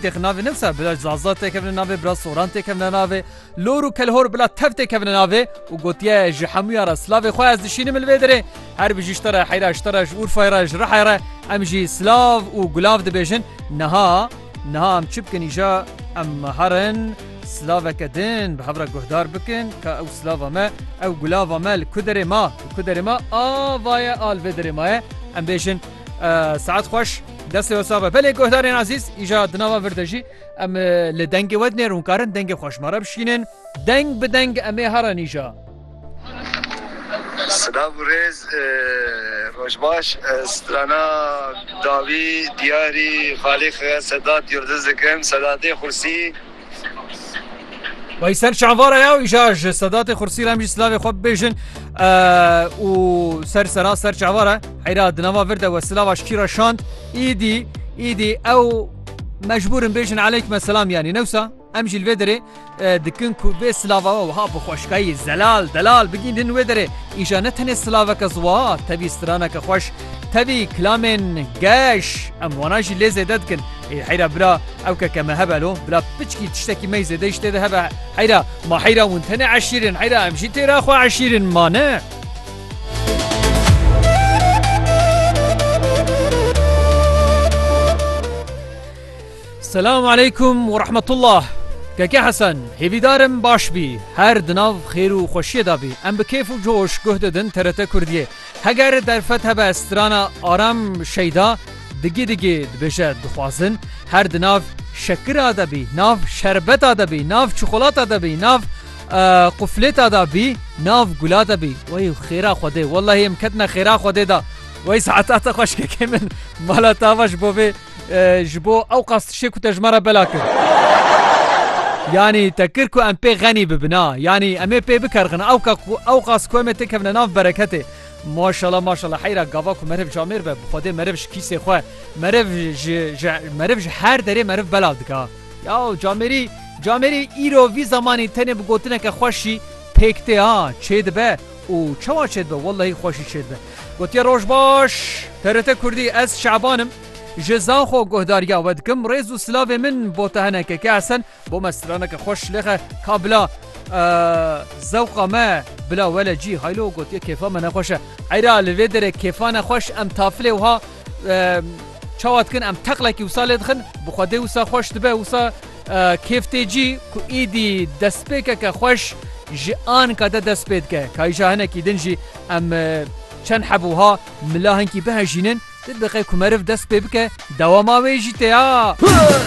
Têxin navê nivsa bila Zaza têkevine navê, bila Soran têkevine navê, Lor û Kelhor bila tev têkevine navê û gotiye ji hemûyan re silavê xwe ez dişînim li vê derê. Her bi ji ji te re heyra ji te re ji Urfayê re ji Rihayê re em jî silav û gulav dibêjin. Niha niha em çi bikin îja em herin silaveke din bi hev re guhdar bikin ka ew silava me ew gulava me li ku derê ma li ku derê ma a vaye a li vê derê ma ye em bêjin Saet xweş destê we sax be. Belê guhdarên ezîz îja di nava vir de jî em li dengê we dinêr hûn karin dengê xwe ji me re bişînin. Deng bi deng em ê herin îja. Silav û rêz roj baş ez strana dawî diyarî xalî xeya sedat yurdiz dikim sedatê xursî Wayî ser çavara ya û îşa ji sedatê xursî re em jî silavê xwe bibêjin û ser sera ser çavara heyra di nava vir de we silava ji kîra şand îdî îdî ew mecbûrin bêjin eleyk me selam yanî newsa em jî vê derê dikin ku vê silava we wiha bi xweşkayî zelal delal bigîn din wê derê îşa ne tenê silaveke ziwa tevî straneke xweş tevî kilamên geş em wana jî lê zêde dikin Ê heyra bila ew keke me hebe lo, bila piçkî tiştekî mey zêde îş tê de hebe. Heyra, ma heyra hûn tenê eşîr in, heyra em jî têra xwe eşîr in, ma ne. Selam aleykum û rehmetullah. Keke Hesen, hêvîdar im baş bî, her di nav xêr û xweşiyê de bî. Em bi kêf û coş guh didin TRT Kurdiyê. Heger derfet hebe strana Aram Şeyda, Digî digî dibêje dixwazin her di nav şekira de bî, nav şerbeta de bî, nav çikolata de bî, nav quflêta de bî, nav gula de bî. Wey xêra Xwedê, wellahî em ketine xêra Xwedê de. Wey saetata xweşkekê min mala tava ji bo vê ji bo ewqas tiştê ku te ji me re bela kir. Yanî te kir ku em pê xenî bibin a. Yanî em ê pê bikerxin ewka ku ewqas ku em ê têkevine nav bereketê. Maşala maşala heyra gava ku meriv ji Amêr be bi xwedê meriv ji kîsê xwe meriv ji ji meriv ji her derê meriv belav dika ya û camêrî camêrî îro vî zemanî tenê bi gotineke xweş jî pêk tê ha çê dibe û çawa çê dibe wellehî xweş jî çê dibe gotiye roj baş TRT kurdî ez Şaban im ji Zanxo guhdarîya we dikim rêz û silavê min bo te hene keke Hesen Bo me straneke xweş lêxe ka bila zewqa me bila wele cî haylo gotiye kêfa me nexweş e. Eyra li vê derê kêfa ne xweş em tafilê wiha çawa dikin em teqlekî wisa lê dixin bi xwedê wisa xweş dibe wisa kêf tê cî ku îdî destpêkeke xweş ji anka de dest pê dike. Kayîja hinekî din jî em çend heb wiha mila hinkî bihejînin di diqe ku meriv dest pê bike dewama wê jî tê ya.